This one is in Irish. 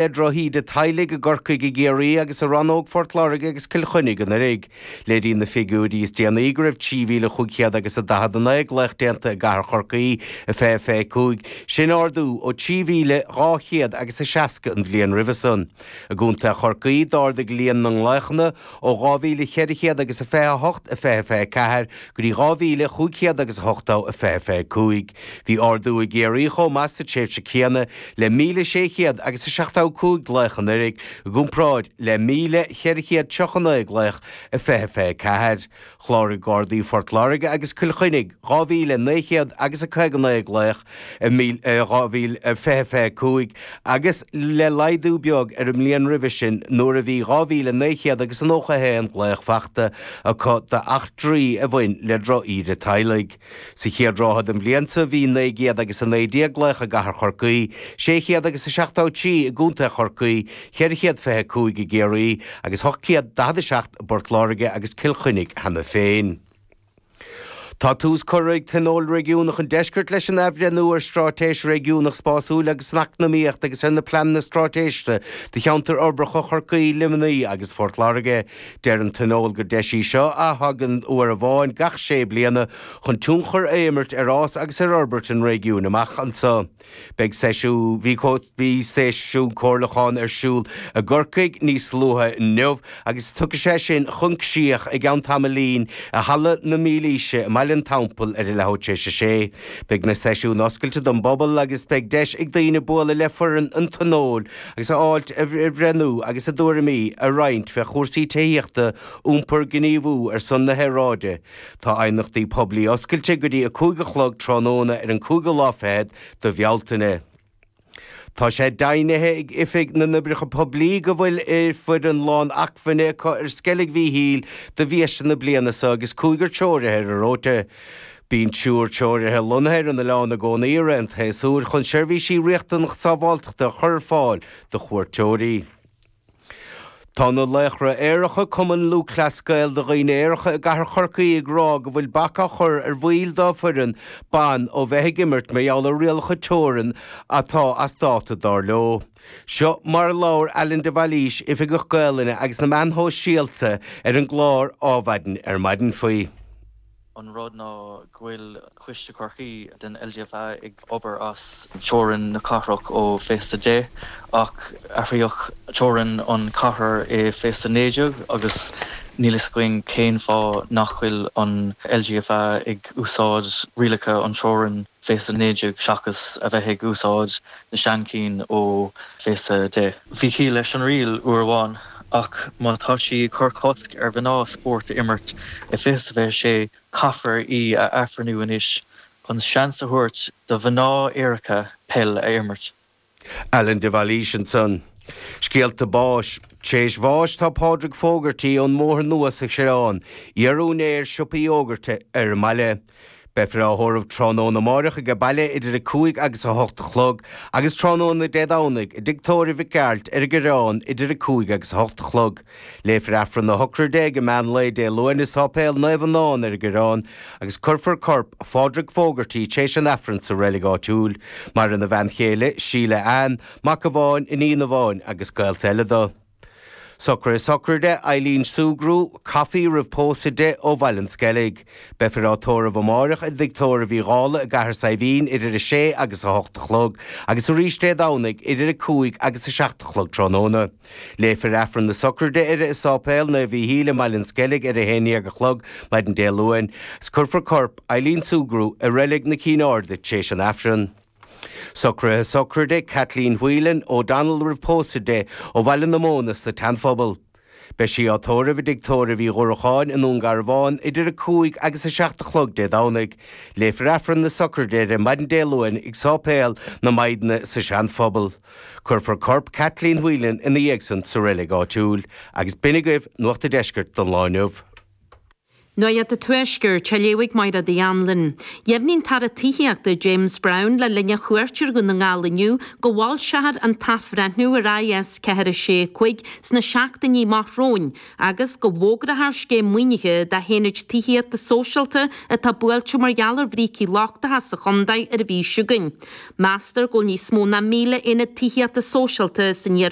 le drochíde teaghlaigh i gCorcaigh, i gCiarraí agus i Rannóg Phort Láirge agus Cill Chainnigh anuraidh. Léiríonn na figiúirí is déanaí go raibh trí mhíle chúig chéad agus a daichead a naoi glaoch déanta i gcathair Chorcaí i fiche fiche cúig, sin ardú ó trí mhíle dhá chéad agus a seasca an bhliain roimhe san. I gcontae Chorcaí, d'ardaigh líon na nglaochanna, Ó 2400 agus a fiche a hocht i fiche fiche a ceathair go dtí 2500 agus a hochtó a fiche fiche cúig, bhí ardú i gCiarraí chomh maith sa tréimhse céanna le 1600 agus a seachtó cúig glaoch anuraidh i gcomparáid le 1439 glaoch i fiche fiche a ceathair. Chláraigh Gardaí Phort Láirge agus Chill Chainnigh 2,900 agus a 59 glaoch i 2020, 25 agus ba laghdú beag ar an mbliain roimhe sin nuair a bhí 2,900 agus a 91 glaoch fachta acu d'eachtraí a bhain le droch-íde teaghlaigh. Sa chéad ráithe den bhliain seo bhí naoi gcéad agus a naoi déag glaoch i gcathair Chorcaí, sé chéad agus a seachtó trí i gContae Chorcaí, cheithre chéad fiche a cúig i gCiarraí, agus hocht gcéad daichead a seacht i bPort Láirge agus Cill Chainnigh cheana féin. Tá tús curtha ag Tionól Réigiúnach an Deiscirt leis an athbhreithniú ar Straitéis Réigiúnach Spásúil agus Eacnamaíoch agus ar na Pleananna Straitéiseacha do Cheantair Uirbeacha Chorcaí, Luimnigh agus Phort Láirge. Deir an Tionól gur deis í seo a thagann uair amháin gach sé bliana chun tionchar a imirt ar fhás agus ar fhorbairt an réigiúin amach anseo. Beidh seisiún, bhí seisiún comhairliúcháin ar siúl i gCorcaigh níos luaithe inniu agus tiocfaidh sé sin chun críoch i gceann tamaillín i Halla na Mílaoise i mBaile an Teampaill ar a leathuair tar éis a sé. Beidh na seisiúin oscailte don bpobal agus beidh deis ag daoine bualadh le foireann an Tionóil agus ábhar a bhreithniú agus a dtuairimí a roinnt fé chúrsaí tithíochta, iompar, gníomhú ar son na haeráide. Tá aighneachtaí poiblí oscailte go dtí a cúig a chlog tráthnóna ar an cúigiú lá fichead de Bhealtaine. Tá sé deimhnithe ag Oifig na nOibreacha Poiblí go bhfuil foireann lán acmhainne acu ar Sceilg Mhíchíl do bhiaiste na bliana seo agus cúigear treoraithe ar an róta. Bíonn triúr treoraithe lonnaithe ar an oileán i gcónaí i rith an tséasúir chun seirbhísí riachtanach sábháilteachta a chur ar fáil do chuairteoirí. Tá na Laochra Aeracha, Cumann Lúthchleas Gael do Dhaoine Aeracha i gCathair Chorcaí ag rá go bhfuil bac á chur ar bhaill dá bhfoireann ban ó bheith ag imirt mar gheall ar rialacha teorann atá as dáta, dar leo. Seo mar a labhair Alan de Bhailís, Oifigeach Gaolainne agus na Meáin Shóisialta ar an gclár Ádhmhaidin ar maidin faoi. an rud ná go bhfuil Coiste Chorcaí den LGFA ag obair as teorainn na cathrach ó fiche is a deich, ach athraíodh teorainn an chathair i fiche is a 19 agus níl fhios againn cén fáth nach bhfuil an LGFA ag úsáid rialacha an teorainn fiche is a 19 seachas a bheith ag úsáid na sean chinn ó fiche is a deich. Bhí ciall leis an riail uair amháin Ach má tá sí ag cur cosc ar mhná spórt a imirt i fiche is a fiche sé, caithfear í a athbhreithniú anois chun seans a thabhairt do mhná áirithe peil a imirt. Alan de Bhailís ansan. Scéalta báis. Tar éis bháis tá Pádraig Fogarty ón mBóthar Nua sa Choireán, iar-úinéir siopa Uí Fhógartaigh ar an mbaile. Beifear á thórramh tráthnóna amáireach aige baile idir a cúig agus a hocht a chlog, agus tráthnóna Dé Domhnaigh i dtigh tórraimh Mhic Gearailt ar an gCoireán idir a cúig agus a hocht a chlog. Léifear Aifreann a shochraide ag an meán lae Dé Luain i Sáipéal Naomh Fhionáin ar an gCoireán, agus cuirfear corp Phádraig Fogarty téis an Aifrinn sa reilig áitiúil. Maireann a bhean chéile, Síle Anne, mac amháin, iníon amháin agus gaolta eile do. Socruithe sochraide Eileen Sugrue, Coffey roimh pósadh di ó Bhaile an Sceilg. Beifear á tórramh amáireach i dtigh tórraimh Uí Dhálaigh i gCathair Saidhbhín idir a sé agus a hocht a chlog agus arís Dé Domhnaigh idir a cúig agus a seacht a chlog tráthnóna. Léifear Aifreann na Sochraide uirthi i Sáipéal Naomh Mhichíl i mBaile an Sceilg ar a haon dhéag a chlog maidin Dé Luain agus cuirfear corp Eileen Sugrue i Reilig na Cinn Airde tar éis an Aifreann. Socruithe sochraide Kathleen Whelan, O'Donnell roimh pósadh di, ó Bhaile na Móna sa tSeanphobal. Beidh sí á tórramh i dtigh tórraimh Uí Dhruacháin i nDún Garbhán idir a cúig agus a seacht a chlog Dé Domhnaigh. Léifear Aifreann na sochraide di maidin Dé Luain ag Sáipéal na Maighdine sa Seanphobal. Cuirfear corp Kathleen Whelan ina dhiaidh san sa reilig áitiúil. Agus b'in agaibh Nuacht a' Deiscirt don lá inniu. Nuacht an Tuaiscirt á léamh ag Mairéad Uí Annluain, dheimhnigh an tAire Tithíochta James Browne le linn a chuairt ar Dhún na nGall inniu go bhfoilseofar an t-athbhreithniú ar IS 4 6 5 sna seachtainí amach romhainn agus go bhfógrafar scéim maoinithe d'aonaid tithíochta sóisialta atá buailte mar gheall ar bhrící lochtacha sa chontae ar an mhí seo chugainn. Meastar go bhfuil níos mó ná 1,000 aonad tithíochta sóisialta san